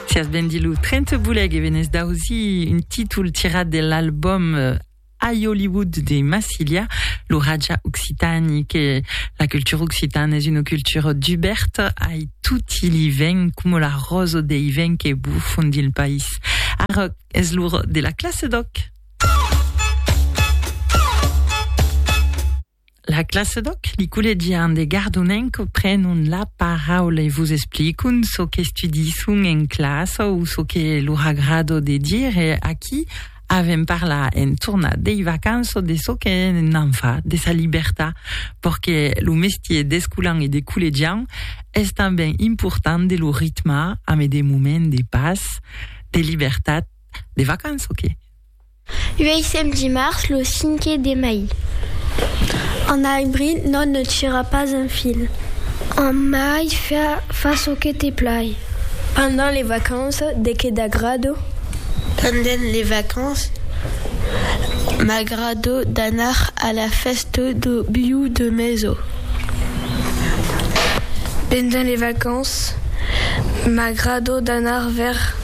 Sias ben dit lo 30 boleg e venés d'ausir un títol tirat de l'album euh, I Hollywood de Massilia, lo Raja Occitani, que la cultura occitana es una cultura duberta ai tutti li vents, coma la rosa dei vents que bufan dins le país. Ara es l'ora de la classe d'òc! La classe d'òc, li collegian de Gardonenc prenon la paraula e vos explicon çò qu'estudisson en classa o çò que lor agrado de dire. Aquí avèm parlar en tornar dei vacanças de çò que n'an fa, de sa libertat, perque lo mestier d'escolan e de collegian es tanben important de lo ritmar amé de moments de pas, de libertat, de vacanças que. Uèissèm dimars lo cinque de mai. En abril non ne tira pas un fil. En mai fa çò que te plai. Pendent les vacances de que t'agrado? Pendent les vacances m'agrado d'anar a la fèsta do biu de meso. Pendent les vacances m'agrado d'anar vers.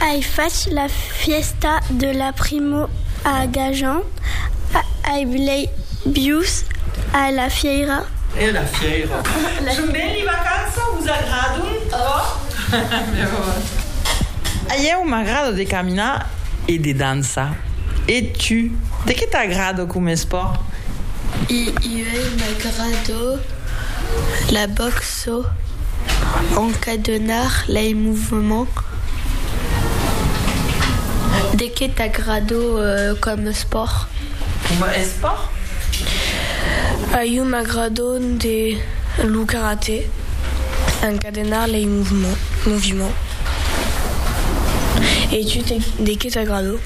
Ai fach la fièsta de la primo a Gajan, ai blei bius a la fièira. Son ben li vacança, vos agradon tròp? A ieu m'agrada de caminar e de dançar. E tu, de qué t'agrada com espòrt? A ieu m'agrada la box. çò encadenar lei movements de que t'agrado coma espòrt? Coma espòrt? A iu m'agrado de lo karate encadenar lei movements e tu de que t'agrado?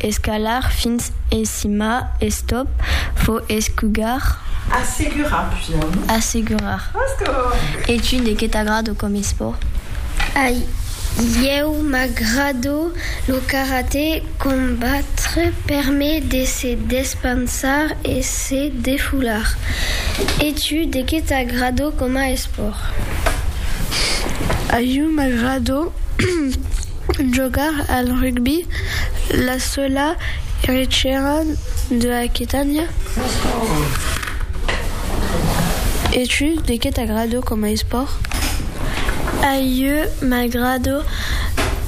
Escalar fins en cima, estop, vo escugar. Assegurar, pujar, non? Assegurar. E tu, de qué t'agrado com esport? A ieu m'agrado lo karaté, combatre per me de se despansar e se defular. E tu, de qué t'agrado coma esport? A ieu m'agrado Jogar al rugbi, la sola erechera de Aquitània. E tu, de qué t'agrado coma espòrt? A ieu m'agrado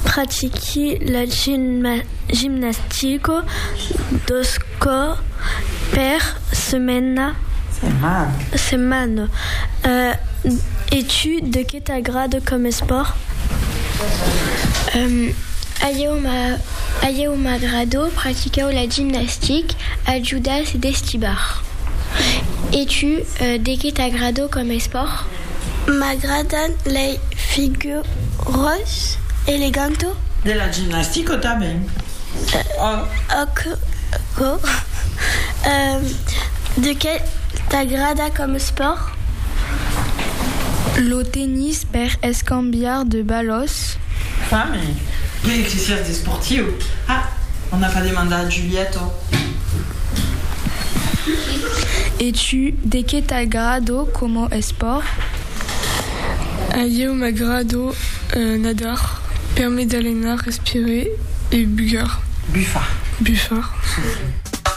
pratiqui la gimnastica dos còr per. Setmana. E tu, de qué t'agrada com espòrt? A ieu m'agrada practicar la gimnastic, ajudar e destibar. E tu, de qué t'agrada com espòrt? M'agradan lei figuras elegantas. De la gimnastica tanben. Aquò de qué t'agrada com espòrt? Lo tennis per escambiar de balòs. Fami, que exercici esportiu! Ah, o n'a pas demandat a Giulietto. E tu, de qué t'agrado como espòrt? A ieu m'agrado Nadar, permet d'alenar, respirer e bugar, bufar.